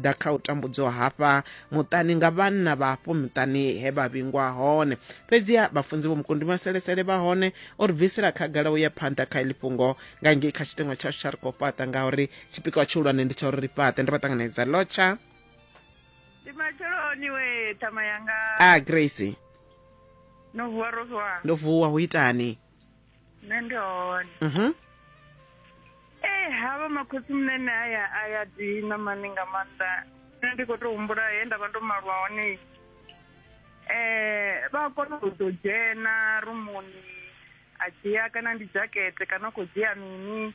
ḓa kha u tambudzwa hafha muṱani nga vhanna vha hafho muṱani he vha vhingwa hone fhedziha vhafunzi vho mukundi maselesele vha hone o ri bvisela khagala u ya phanḓa kha iḽi fhungo nga ngei kha tshiteṅwa tshashu tsha ri khou fhaṱa ngauri tshipikwa tshihulwane ndi tsha uri ri fhaṱe ndo vha ṱanganedza lotsha ndi matsheloni we thama yanga a grace no vuwa ro vuwa ndo vuwa hu itani nṋe ndi hone mhm ee eh, havha makhotsi munene aya a ya dina mani nga maanḓa nṋe ndi khou tou humbula he nda vha ndo malwa hone eh vha kona u ḓo dzhena rumuni a dzhia kana ndi dzhakete kana u khou dzhia mini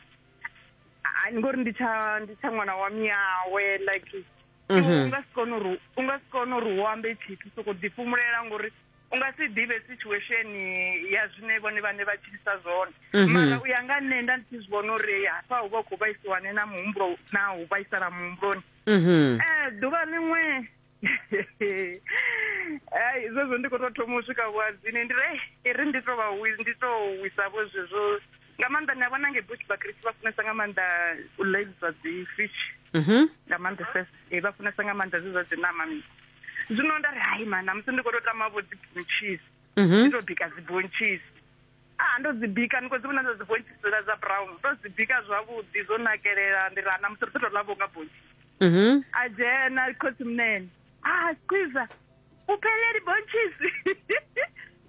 ngori ndi tsha ndi tsha ṅwana wa miyawe like mhm. u nga si kone uri u nga si kone uri u ambe tshithu soko ḓifhumulela ngori u nga si ḓivhe situation ya zwine vhone vhane vha tshilisa zwone mhm. mara u ya nga nṋe nda ndi tshi zwi vhona uri hafha hu vha u khou vhaisiwane na muhumbulo na u vhaisala muhumbuloni mhm. eh, ḓuvha ḽiṅwe ai zwezwo ndi khou tou thoma u swika vhuadzini ndi re i ri ndi tou vha ndi tou wisavho zwezwo nga maanḓa ni a vhona nge bush vhakriste vha funesa nga maanḓa u ḽailisa dzi fish mhm. nga maanḓa ses eh, vha funesa nga maanḓa zwe zwa dzi nama mi zwino nda ri hai ma namusi ndi khou tou tama vho dzi bunchis mhm. ndi tou bika dzi bunchis a ah, ndo dzi bika ndi khou dzi vhona ndo dzi bunchis dzula dza brown ndo dzi bika zwavhuḓi zwo nakelela ndi ri a ah, namusi ri ḓo tou ḽa vho nga bunchis mhm. a dzhena khotsi munene a ah, squiza o phele di-bonches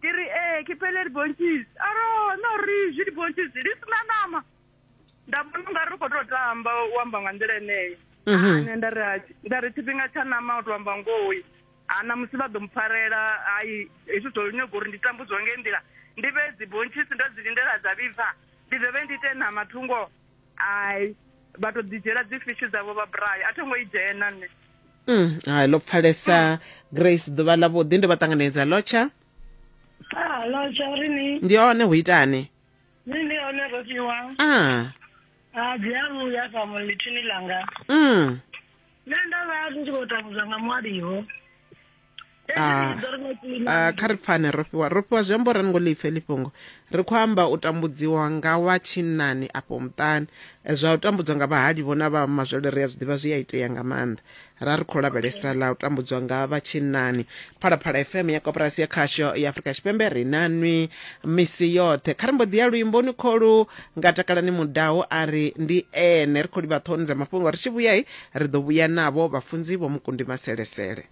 ke re ee ke phele di-bonches a ro no re je di-bonches di sena nama nda vhona unga ri khou tou tamba u amba nga nḓila eneyo mhm. ane nda ri nda ri tshifhinga tsha nama u to amba ngoyi ana musi vha ḓo mpfarela hai hezwi zwo nyaga uri ndi tambudzwa nge nḓila ndi vhe dzibonchisi ndo dzi lindela dza vhibva ndi dovhe ndi ite nama thungo ai vha to ḓi dzhiela dzi fishi dzavho vha bray a tho ngo i dzhena nṋe Mm, hai ḽo pfalesa grace ḓuvha ḽa vhuḓi ndo vha ṱanganedza lotsha ah lotsha uri ni ndi hone hu itani ni ndi hone ro fhiwa ah a ah, dzi a vhuya sa mulithini langa mm nṋe ndo vha ndi tshi khou tambudzwa nga mwaliho Ah, ah, kha ri pfane ro fhiwa ro fhiwa zwiambo ra ngo lipfe lifhungo ri khou amba u tambudziwa nga wa tshinnani afho muṱani Eh, zwa u tambudzwa nga vhahali vho na vha mazwele ri a zwi ḓivha zwi a itea nga maanḓa ra ri khou lavhelesa ḽa u tambudzwa nga vha tshinnani phalaphala fm ya koporasi ya khasho ya afurika tshipembe ri na nwi misi yoṱhe kha ri mbo ḓi ya luimboni kholu nga takalani mudau a ri ndi ene ri khou livha ṱhohoni dza mafhungo ri tshi vhuyai ri ḓo vhuya navho vhafunzi vho mukundi maselesele.